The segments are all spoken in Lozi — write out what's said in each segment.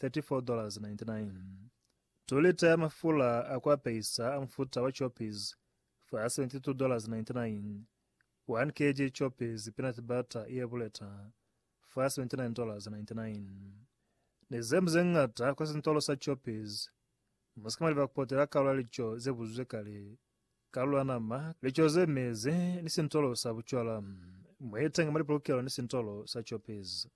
34.99 2 lita ya mafula a ku apeisa a mufuta wa choppies fa $72.99 1 kg choppies peanut butter ye buleta fa $79.99 Ni ze mu ze ñata kwa sintolo sa choppies Mu si ka mwa leba ku potela kalulo ya lico ze buzuzwe kale, kalulo ya nama, lico ze mezi, ni sintolo sa bucwala. Mu itenge mwa lipolokelo ni sintolo sa choppies.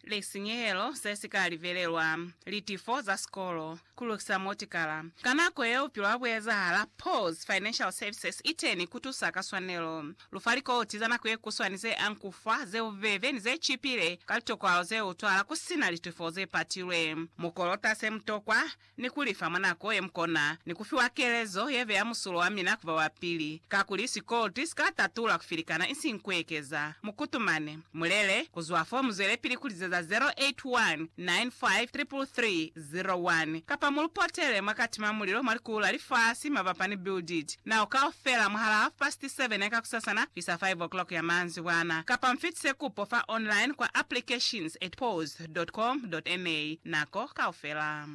Lisinyehelo se si ka livelelwa, litifo za sikolo, ku lukisa motikala. Ka nako yeo bupilo ha bu ezahala. Paul's Financial Services i teni ku tusa ka swanelo. Lu fa likoti za nako ye kuswani ze ankufa, ze bubebe, ni ze cipile ka litokwalo ze utwala ku si na litifo ze patilwe. Mu kolota se mu tokwa ni ku li fa mwa nako ye mu kona, ni ku fiwa kelezo ye beya musulo wa mina ku ba wa pili, kakuli sikolti si ka tatula ku filikana isiñi ku ekeza. Mu kutumane. Mu lele. Ku zwa fo mu zwelepili ku lizeza 0819533301, kapa mu lu potele mwa kati mwa mulilo mwa likulu la lifasi mabapa ni Bill Deet, nao kaufela mwahalaa hafupasiti 7 ya kakusasana kuisa 5 o'clock ya manzibwana, kapa mu fitise kupo fa online kwa applications at pause. www.com.ma nako kaufela.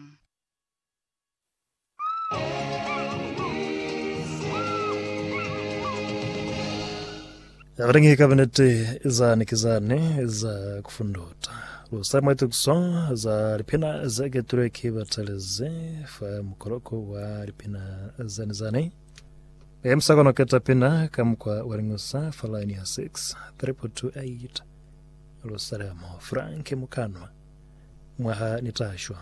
Abalingi kabineti izani kizani za kufunduta lusali mwa tukiso za lipina za Katoliki batalezi fa mukoloko wa lipina zani zani bayamusa kono keta pina ka mukwa wa liñusa fa line ya 6 3.28 Yerusalema, Frank Mukanwa, Mwaha ni ta shwa.